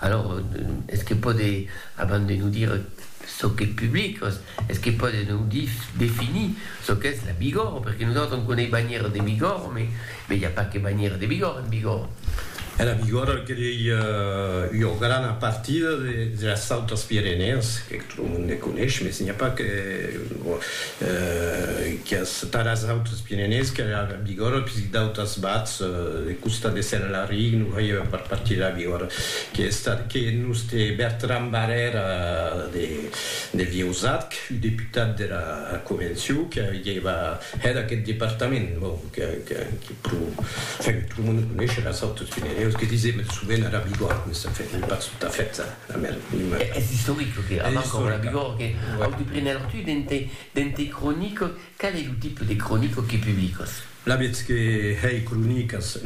Alors, es que pòde, abans de nos dire çò qu'es public, es que pòde nos dire, definir çò qu'es la Bigòrre, perque nosautres on coneis banhièra de Bigòrre, mais mais i a pas que banhièra de Bigòrre en Bigòrre. E la Bigòrre qu'ei ua grana partida de las Autes Pirenèes, Lo monde me coneis, mes n'i a pas que quias taras d'autres pirenèus que la Bigòrra, que si d'autras bats de costat de Saint-Lary, no veieu a part partir de la Bigòrra, que es estat que nos de Bertran Barrèra de Vieusat, que fui deputat de la Convencion, que avieva hèt aqueth departament, bon, que que pro, enfin, que tot lo monde coneishe las autres pirenèus, que disem sovent era Bigòrra, mes enfin, n'ai pas tot a fèt. Es istoric lo que avança lo Labigor que au de prener tu dens tes cronicas, qual ei lo tipe de cronica que publicas? Lavetz que hèi cronicas,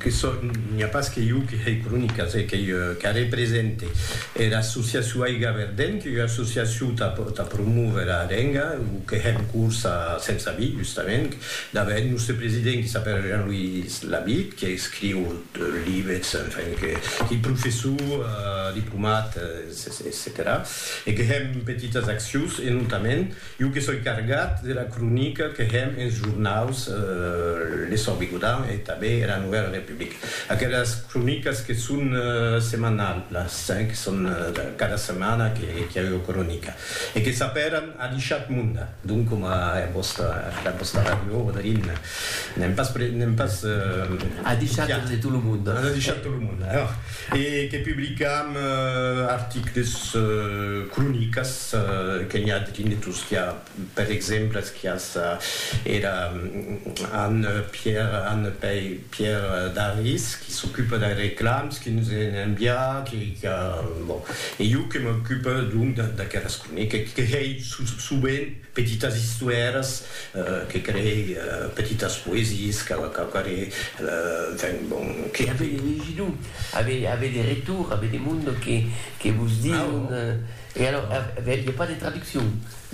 que sò, n'i a pas que jo que hèi cronicas, hè qu'ei qu'a represente era associacion Aiga Verden, qu'ei ua associacion tà promóver a Arenga, o que hè en curs a Sensabí justament, d'a vèr eth nòste president qui s'apèra Jean-Louis Lavitte, que escriu Libets, enfin, que qui professor, diplomat, etcetèra E que hèm petitas accions, e notament, jo que soi cargat de la cronica que hèm ens jornaus L'Essor Bigodan e tanben era Nouvèla Republique. Aquelas cronicas que son semanalhas, que son cada setmana que i a ua cronica e que s'apèran Adishat Monda. Donc coma a vòsta afilat vòsta ràdio Rodolin n'èm pas pre n'èm pas A deishat en de tot lo monde. A deishat tot lo monde alors e que publicam articles cronicas que n'i a de tinnetos qui a per exemples qui a sa era Anne Pierre Anne Pei Pierre Daris, qui s'ocupe dei reclams que nos en envià, que, que a, bon, e jo que m'ocupe, donc, de, d'aqueras cronica, que crei sovent petitas istoèras, que crei petitas poesies, que, que crei, enfin, bon, que. E avei de legir-lo, avei, avei de retorn, avei de monde que, que vos dion, E alors, il n'y a pas de traduccion?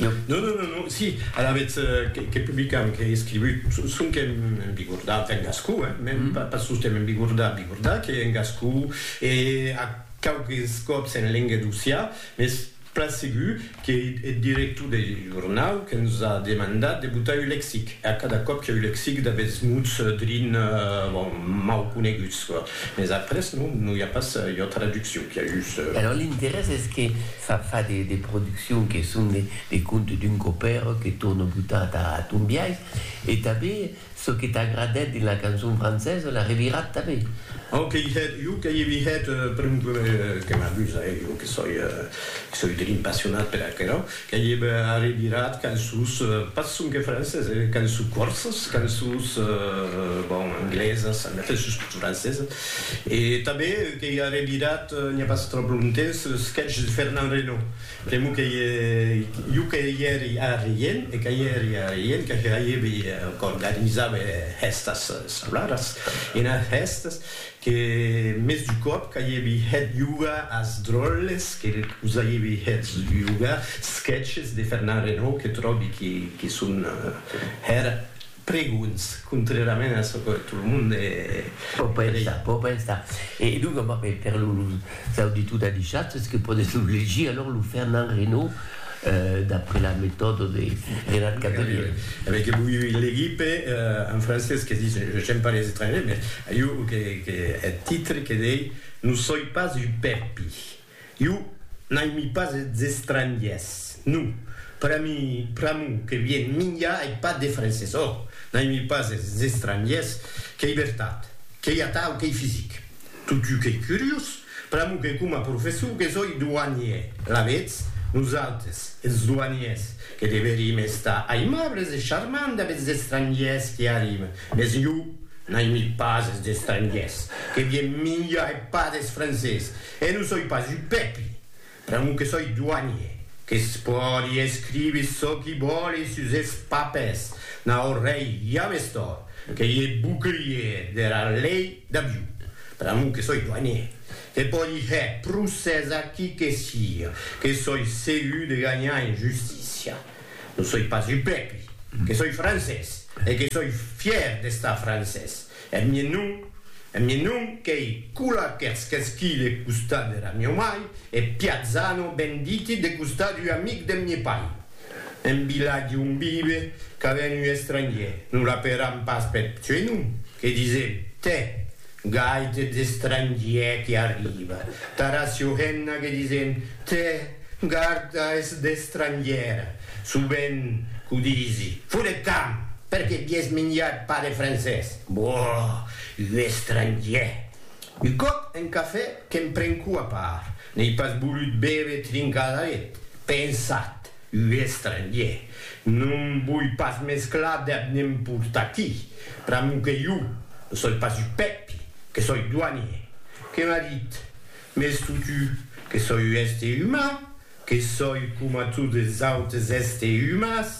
Non, non, non, non, si, alavetz que publicam, qu'è escrivut, sonque en bigordà, enfin en gascon, hein, mèn pas sostemp en bigordà, bigordà, qu'è en gascon, e a quauques còps en lenga d'Ossià, mès plan segur qu'ei eth director deth jornau que nos a demandat de botar un lexic, e a cada còp qu'è un lexic d'aguests mots drin, bon, mau coneguts, Mes après non, non i a pas ua traduccion, qu'i a just. Alors l'interès es que fa fa de de produccion que son de de contes d'un copèro que torna botar ta ton biais e tanben çò que t'a agradèt dins la cançon francesa l'a revirat tanben. Au que i hèt, jo que i vi hèt, per un que m'abusa, eh, jo que soi, que soi drin passionat per aquerò. Qu'ei eb arribirat qu'en sus, pas sonque francés, eh, qu'en sus corses, qu'en sus, bon, anglesas, en efèth sus tot francesas. E tanben qu'ei arribirat n'i a pas tròp longtemps eth sketch de Fernand Reynaud. Pr'amor qu'ei jo que i èri arrien, e que i èri arrien, que hèibi, qu'organizabe hèstas salaras, enas hèstas, Que mès du còp qu'aievi hèt jugar as dròlles que vos aievi hèts jugar sketches de Fernand Renaud que tròbi que son hèr pregons contrèrament a çò que tot lo monde pò pensar. E donc, per Cau de tot adishat es que pòdes lo legir alòr lo Fernand Reynaud d'après la metòda de Renat Cavelièr. A veir que voi legir per un francés que dis j'aime pas les étrangers mais iu que que eth titre que dei no soi pas un pèpi iu n'aimi pas es estrangiers non pera mi pr'amor que vien minja ei pas de francés ò n'aimi pas es estrangiers qu'ei vertat qu'ei atau qu'ei fisic. Totjou qu'ei curiós, pr'amor que coma professor que soi douanier, alavetz, nosautres, es douaniers, que deverim estar aimables e charmants dab es estrangiers qui arriben, mes jo n'aimi pas es estrangiers, que vien minjar e pas des francés, e non soi pas un pèpi, Pr'amor que soi doanier, que's pòdi escrivi çò qui vòli sus es papers, nau rei james tòr, que i e bouclier dera lei d'avion. Pr'amor que soi doanier, que pòdi hèr procès a qui que sia, que soi segur de ganhar en justícia. Non soi pas upèpi, que soi francés, e que soi fièr d'estar francés. Eth mien non, eth mien non qu'ei cula qu'ers qu'esquile eth costat dera mieu mai, e piatzano ben diti deth costat ua amic deth mie pai. En vilatge on vive qu'a ben ua estrangier, non la peram pas peth suei nom, que disem, tè, gai t'eth estrangier que arriba, tara siohenna que disem, tè, garda es d'estrangiera, Sovent qu'o disi. Fodet camp! Perqué vies minjat pas de francés? Boh! Un estrangier! Un còp en cafè que'm prenco a part, n'ei pas volut béver trincadaret. Pensat, un estrangier! No'm voi pas mesclar dab ne'm port'aquí, pr'amor que jo no soi pas un Pèpi, que soi douanier. Que m'a dit, Mès totu, que soi un èster uman, Que soi coma totes autes èste umas,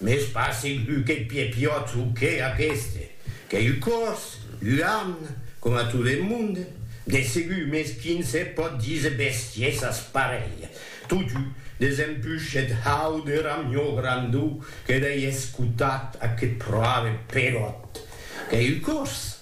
mès pas segur qu'eth pie piòt o que aqueste. Qu'ei un còs, un arn, coma tot eth monde, de segur, mès quin se pòt díser bestiesas parelha. Totú, desempuish eth hau de ramió grandó que dei escotat a que proave peròt. Qu'ei un còs.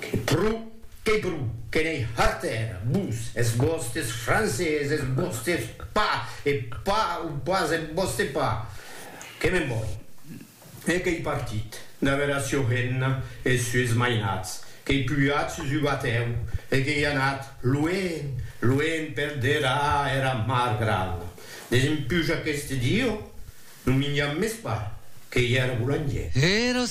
Que pro, que pro, que n'ei harter, vos, es vòstes francés, es vòstes pas, e pas o pas es vòste pas. Que me'n voi. E qu'ei partit, d'aver a Siorena e es sues mainats, qu'ei pujat sus ua tèu e qu'ei anat luenh, luenh per dera era mar grana, Desempuja aqueste dieu, non minjam mès pas, qu'ei era bolangièr. Era